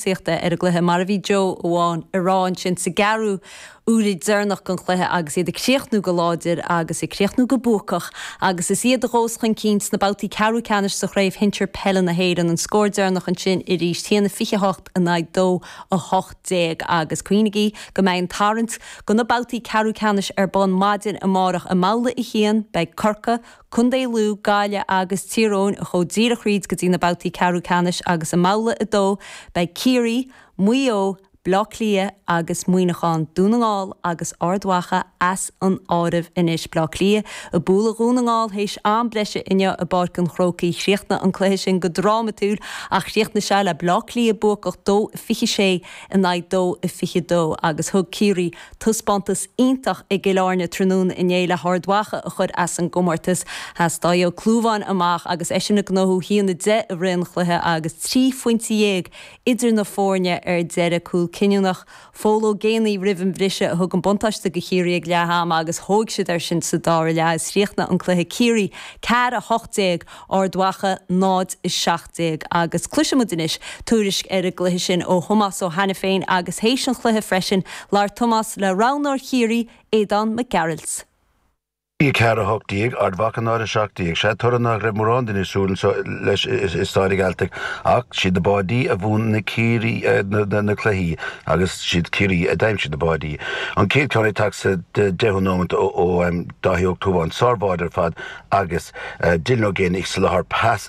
rásaíochta ar an gcluiche mar a bhí Joe amháin ag rá ansin sa gceathrú uaire deireanach den chluiche agus iad ag críochnú go láidir agus ag críochnú go buacach agus is iad a ghabhas chun cinn sna babhtaí ceathrú ceannais sa Chraobh Shinsir Peile na hÉireann an scór deireanach ansin arís haon 28 in aghaidh dó 18 agus cuimhnigí go mbeidh an tarraingt do na babhtaí ceathrú ceannais ar bun maidin amárach i mbabhla a haon beidh Corcaigh Contae Lú, Gaillimh agus Tír Eoghain a chuaigh díreach thríd go dtí na babhtaí ceathrú ceannais agus i mbabhla a dó beidh Ciarraí, Maigh Eo, Baile Átha Cliath agus Muineachán, Dún na nGall agus Ard Mhacha as an áireamh anois. Baile Átha Cliath ag bualadh Dhún na nGall théis am breise inniu i bPáirc an Chrócaigh. Chríochnaigh an cluiche sin go drámatúil ach chríochnaigh sé le Baile Átha Cliath buacach dó a fiche sé in aghaidh dó a fiche dó agus thug Ciarraí taispeántas iontach i gCill Airne tráthnóna inné le hArd Mhacha a chur as an gcomórtas. Sheas Dáithí Ó Clúmháin amach agus eisean ag gnóthú haon a deich i rith an chluiche agus trí phointe dhéag idir na foirne ar deireadh. Cúl cinniúnach Phól Ó Géibheannaigh roimh an bhriseadh a thug an buntáiste do Chiarraí ag leath ama agus thóg siad air sin sa dara leath is chríochnaigh an cluiche Ciarraí 4 18, Ard Mhacha 0 17. déag agus cloisimid anois tuairisc ar an gcluiche sin ó Thomás Ó hAiniféin agus théis an chluiche freisin labhair Tomás le roghnóir Chiarraí, Aodán Mac Gearailt. Ciarraí 4 18, Ard Mhacha 0 17, Sea, toradh nach raibh mórán daoine ag súil leis i Staid an Ghearaltaigh, ach siad na báidí a bhuann na Ciarraí na cluichí agus siad Ciarraí a d'aimsigh na báidí. An chéad ceann ag teacht sa deichiú nóiméad ó Dáithí Ó Clúmháin, sárbháide ar fad, agus Dylan Ó Géibheannaigh ag soláthar pas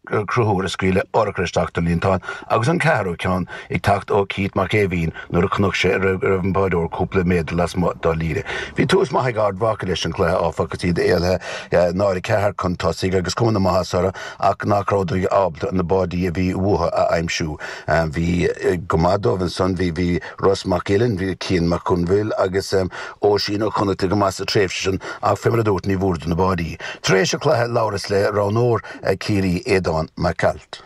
ag cruthú agus ag scaoileadh urchair isteach don líontán, agus an ceathrú ceann ag teacht ó Keith Mac Éimhín nuair a chonaic sé go raibh an báideoir cúpla méadar lasmuigh dá líne. Bhí tús maith ag Ard Mhacha leis an gcluiche, áfach, agus iad éalaithe 0-4 chun tosaigh agus cuma na maitheasa orthu ach nach rabhadar ábalta na báidí a bhí uathu a aimsiú. Bhí go maith dóibh ansan, bhí bhí Ros Mac Uilín, bhí Cian Mac Conmhaoil agus Oisín Ó Connachtaigh go maith sa tréimhse sin ach fé mar a dúirt ní bhfuaireadar na báidí. Tar éis an chluiche, labhras le roghnóir a Chiarraí Aodán Mac Gearailt.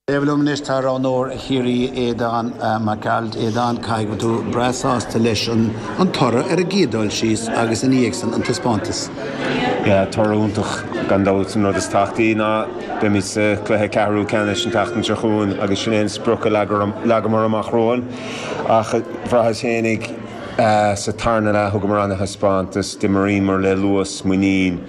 Taobh liom anois tá roghnóir a Chiarraí Aodán Mac Gearailt. Aodán, caithfidh go bhfuil tú breá sásta leis an toradh ar an gcéad dul síos agus ina dhiaidh san an taispeántas. Yeah, toradh iontach gan dabht. An rud is tábhachtaí ná beimid sa chluiche ceathrú ceannais an tseachtain seo chugainn agus sin é an sprioc a leagamar amach romhainn ach bhraitheas féin ag. Sa tarna leath, thugamar ana-thaispeántas, d'imríomar le luas, muinín,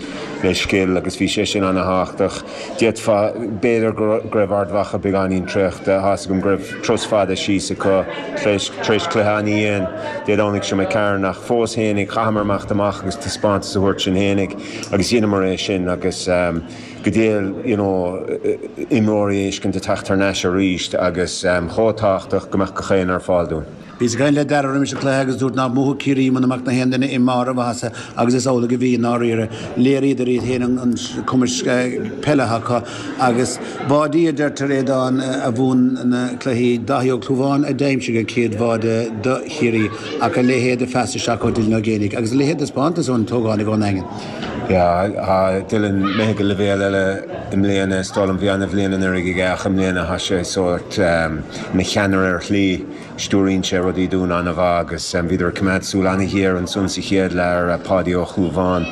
le scil agus bhí sé sin ana-thábhachtach. D'fhéadfá, b'fhéidir go raibh Ard Mhacha beagáinín traochta, tá's agam go raibh turas fada síos acu tar éis cluiche ana-dhian Dé Domhnaigh seo imigh tharainn, ach fós fhéinig, chaitheamar imeacht amach agus taispeántas a thabhairt sinn fhéinig agus dheineamar é sin agus go deas you know imreoirí a fheiscint ag teacht thar n-ais arís agus chomh tábhachtach go mbeadh gach éinne ar fáil dúinn. Bhíos ag caint le Darragh roimis an cluiche agus dúirt nach mbuafadh Ciarraí muna mbeadh nach aon duine i mbarr a mhaitheasa agus is amhlaidh a bhí i ndáiríre. Léiríodar iad féin an cumas peile atá acu agus báidí a deirtear Aodán a bhuann na cluichí. Daithí Ó Clúmháin a d'aimsigh an chéad bháide do Chiarraí ach a leithéid de phas isteach ó Dylan Ó Géibheannaigh agus a leithéid de thaispeántas ón t-ógánach ón Daingean. Tá Dylan imithe go leibhéal eile i mbliana. Is dóigh liom bhí ana bhliain anuraidh aige ach i mbliana tá sé sórt ina cheannaire ar shlí. Stiúraíonn sé rudaí dúinn an-mhaith agus bhíodar ag coimeád súil an-ghéar ansan sa chéad leath ar Paudie Ó Clúmháin,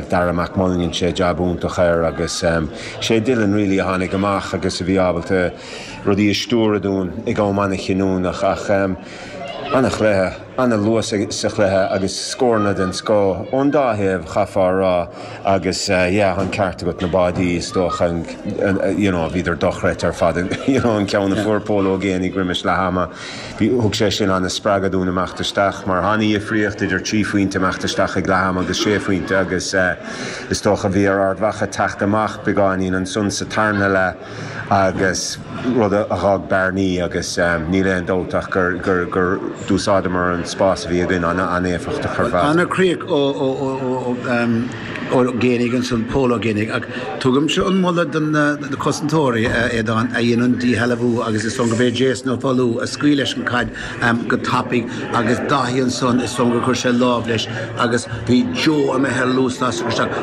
Darragh McMullan, dhein sé jab iontach air agus is é Dylan really a tháinig amach agus a bhí ábalta rudaí a stiúradh dúinn ag am an-chinniúnach ach an-chluiche. Ana-luas sa chluiche agus scóranna den scoth ón dá thaobh, chaithfeá a rá, agus yeah, an ceart agat, na báidí, is dócha, you know, bhíodar dochreidte ar fad, you know, an ceann a fuair Pól Ó Géibheannaigh roimis leath ama, thug sé sin an-spreagadh dúinn imeacht isteach, mar tá ana-dhifríocht idir trí phointe imeacht isteach ag leath ama agus sé phointe agus is dócha bhí ar Ard Mhacha teacht amach beagáinín ansan sa tarna leath. agus rud a dh'fhág bearnaí agus níl aon dabht ach gur d'úsáideamar an spás a bhí againn an-éifeachtach ar fad. Ana chríoch ó Géibheannaigh ansan Pól Ó Géibheannaigh ach tugaimse an moladh do na cosantóirí, Aodán, a dhein an díshealbhú agus is dóigh gurb é Jason Ó Foghlú a scaoil leis an caid go tapaidh agus Daithí ansan is dóigh gur chuir sé lámh leis agus bhí Joe imithe ar luas lasrach isteach.